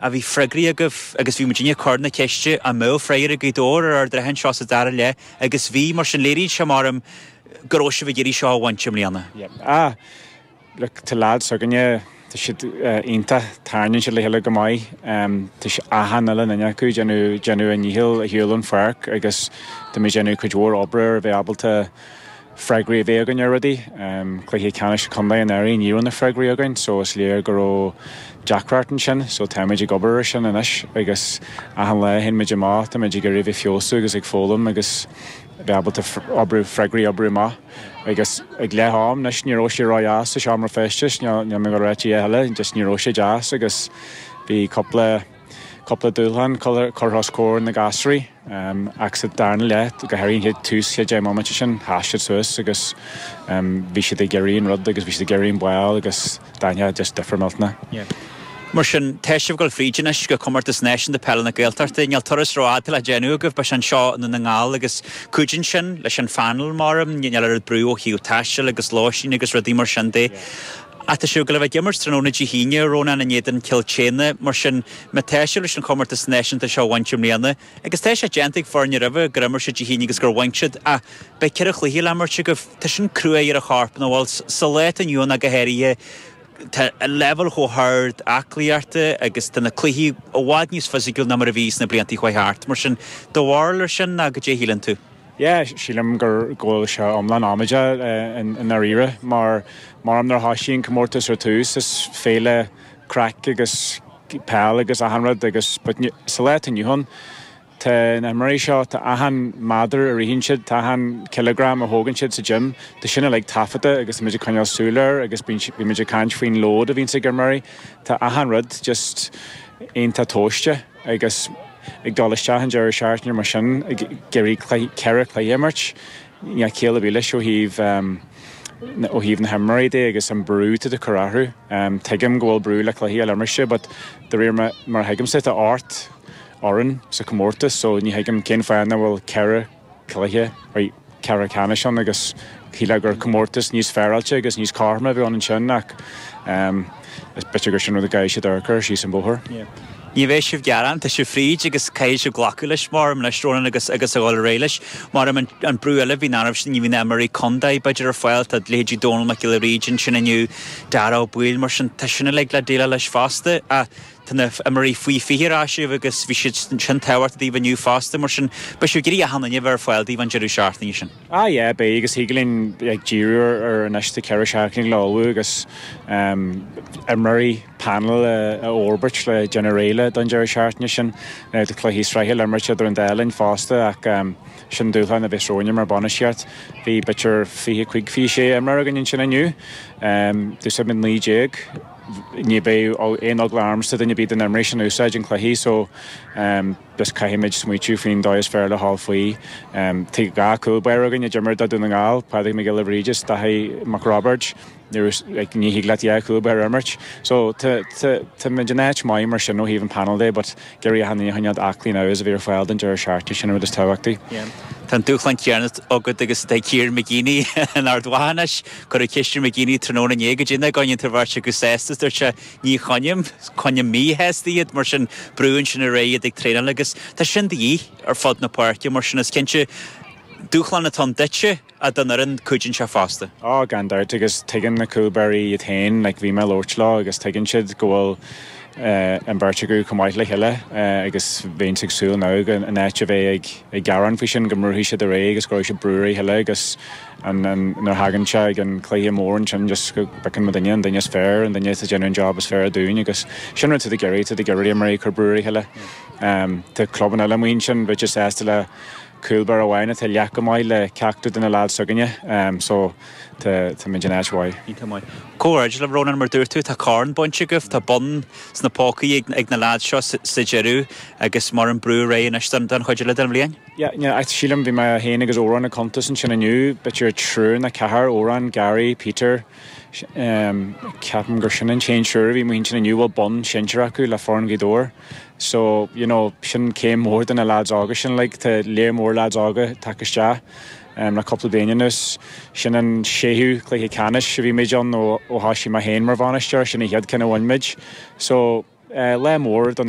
a bhí freagraí agaibh agus bhí muidinne ag cur na ceiste an mbeadh freagraí ag Gaoth Dobhair ar Ard an Rátha anseo sa dara leath agus bhí, mar sin léiríonn sé, maram, go raibh sibh ag iarraidh seo a bhaint i mbliana. Yeah. Ah. Look, tá leaids s'againne, tá siad iontach, tarraingíonn siad le chéile go maith. Um, tá sé achan uile duine acu déanamh, déanamh a ndícheall ar shiúl ón pháirc agus tá muid déanamh cuid mhór oibre ar a bheith ábalta freagraí a bheith againn ar rudaí. Cluiche Ceannais Contae anuraidh ní raibh na freagraí againn so is léir go raibh deacracht ansin so táimid ag obair ar sin anois agus achan lá a théann muid amach táimid ag iarraidh a bheith feabhsú agus ag foghlaim agus bheith ábalta oibriú freagraí a oibriú amach agus ag leath am anois ní raibh sé ró dheas sa seomra feistis níl mé ag dul a ráit a dhath eile just ní raibh sé deas agus bhí cúpla cúpla dúshlán curtha os comhair na gasúraí ach sa darna leath, go háirithe ag tús an chéad deich mbomaite sin, sheas siad suas agus bhí siad ag iarraidh an rud agus bhí siad ag iarraidh an ball agus d'aithin tú just difear millteanach. Mar sin, tá sibh ag dul fríd anois go Comórtas Náisiúnta Peile na Gaeltachta. Níl turas rófhada le déanamh agaibh, beidh sé anseo i nDún na nGall agus cuidíonn sin leis an phainéal, maram, níl oiread brú ó thaobh taistil agus lóistín agus rudaí mar sin de. ach tá sibh ag gabháil a bheith ag imirt tráthnóna Dé hAoine, Rónán in éadan Cill tSéadhna. Mar sin, má tá sibh leis an chomórtas náisiúnta seo a bhaint i mbliana, agus tá sé déanta ag foirne roimhe gur imir siad Dé hAoine agus gur bhain siad, ach beidh ceithre chluiche le himirt agaibh, tá sin cruaidh ar an chorp nó, bhuel, sa lá atá inniu ann ach go háirithe, tá an leibhéal chomh hard aclaíochta agus tá na cluichí i bhfad níos fisiciúil ná mar a bhí sna blianta chuaigh thart. Mar sin, do bharúil air sin, nó cad é a shíleann tú? yeah sílim gur go bhfuil sé iomlán amaideach i ndáiríre mar maram nuair a thoisigh an comórtas ar tús is féile craic agus peil agus achan rud agus but sa lá atá inniu ann tá na himreoirí seo tá achan méadar a ritheann siad tá achan cileagram a thógann siad sa gym tá sin uilig taifeadta agus tá muid ag coinneáil súil air agus bíonn bíonn muid ag caint faoin load a bhíonns ag imreoirí tá achan rud just iontach tomhaiste. agus ag dul isteach an deireadh seachtaine mar sin, ag iarraidh ceithre cluiche a imirt, níl ciall ar bith leis ó thaobh, ó thaobh na himreoirí de agus an brú atá tú ag cur orthu. Tuigim go bhfuil brú le cluichí eile a imirt but de réir mar a thuigimse tá ocht bhfoireann sa chomórtas so ní thuigim cén fáth nach bhfuil ceithre cluiche ceathrú ceannais ann agus shílfeá gur comórtas níos féaráilte agus níos cothroime a bheadh ann ansin ach is b'fhéidir gur sin rud a gcaithfidh siad amharc air síos an bóthar. Ní bheidh sibh ag gearán, tá sibh fríd agus caithfidh sibh glacadh leis mar leis, Rónán, agus agus a dhul ar aghaidh leis. Mar an brú eile a bhíonn ann, ní bhíonn imreoirí contae b'fhéidir ar fáil, tá leithéidí Dónall Mac Giolla Bhríde ansin inniu, Dáire Ó Baoill, mar sin tá sin uilig le déileáil leis fosta. Tá na feimearaí faoi 20 ar ais libh agus bhí siad sin tábhachtach daoibh inniu fosta, mar sin beidh sibh ag iarraidh achan duine ar fáil daoibh an deireadh seachtaine sin. Ah yeah, beidh agus thig linn like díriú ar anois tá ceithre seachtaine le ullmhú agus imreoirí panel a fhorbairt le déanamh réidh le don deireadh seachtaine sin le dhá chluiche sraithe le imirt idir an dá linn fosta ach sin dúshlán a bheas romhainne mar bainistíocht. Bhí b'fhéidir 25, 26 imreoir againn ansin inniu. D'úsáid muid 19. ní bheadh aon eagla ormsa duine ar bith de na himreoirí sin a úsáid i gcluichí so just caithfimid smaoitiú faoin dóigh is fearr le ghabháil faoi. Tá dhá cúl báire againn a d'imir do Dún na nGall, Pádraig Mac Giolla Bhríde is Daithí Mac Roibeaird, like ní thig leat dhá cúl báire a imirt so tá tá tá muid in áit maith mar sin ó thaobh an panel de but, Ag iarraidh achan duine againn aclaí agus a bheith ar fáil don deireadh seachtaine, sin an rud is tábhachtaí. Tá an dúshlán céanna agat agus atá ag Kieran McGeeney in Ard Mhacha anois. Cuireadh ceist ar McGeeney tráthnóna inné an gcoinníonn tú an bheirt acu sásta is dúirt sé Ní choinnim, coinnim mí-shásta iad mar sin brúann sin ar aghaidh iad ag traenáil agus tá sin de dhíth ar fud na páirce mar sin is cinnte dúshlán atá ann duitse ó thaobh na gcúl báirí seo fosta. Ó, gan dabht, agus tuigeann na cúl báirí iad féin, like, bhí mé ag labhairt leo agus tuigeann siad go bhfuil eh, an bheirt acu chomh maith le chéile eh, agus bheinn ag súil now go, in áit a bheith ag, ag gearán faoi sin, go mbrúfaidh siad ar aghaidh agus go gcuirfidh siad brú ar a chéile agus an, an, nuair a thagann sé chuig an cluiche mór ansin just go bpiocann muid an duine, an duine is fearr, an duine atá ag déanamh an job is fearr dúinn agus sin rud atá muid ag iarraidh, tá muid ag iarraidh na himreoirí ag cur brú ar a chéile. Em, tá clubanna eile amuigh ansin bheadh siad sásta le, cúl báire amháin atá leath chomh maith le ceachtar de na leaids s'againne so tá tá muid in áit mhaith. Iontach maith. Comhghairdeas libh Rónán, mar a dúirt tú tá corn bainte agaibh, tá bonn sna pócaí ag na leaids seo sa deireadh agus mar a bheadh an brú ar aghaidh anois don chuid eile den bhliain. Yeah, yeah, sílim, bhí mé féin agus Odhrán ag cuntas ansin inniu, b'fhéidir triúr nó ceathrar, Odhrán, Gary, Peter, ceapaim gur sin an t-aon triúr a bhí in m'intinn inniu a bhfuil bonn sinsir acu le foireann Ghaoth Dobhair so you know sin céim mhór do na lads óga sin like tá lear mór lads óga tagtha isteach um, le cúpla bliain anuas sin an séú cluiche ceannais a bhí muid ann ó, ó thoisigh mé féin mar bhainisteoir sin a chéad cheann a bhain muid so uh, lá mór do na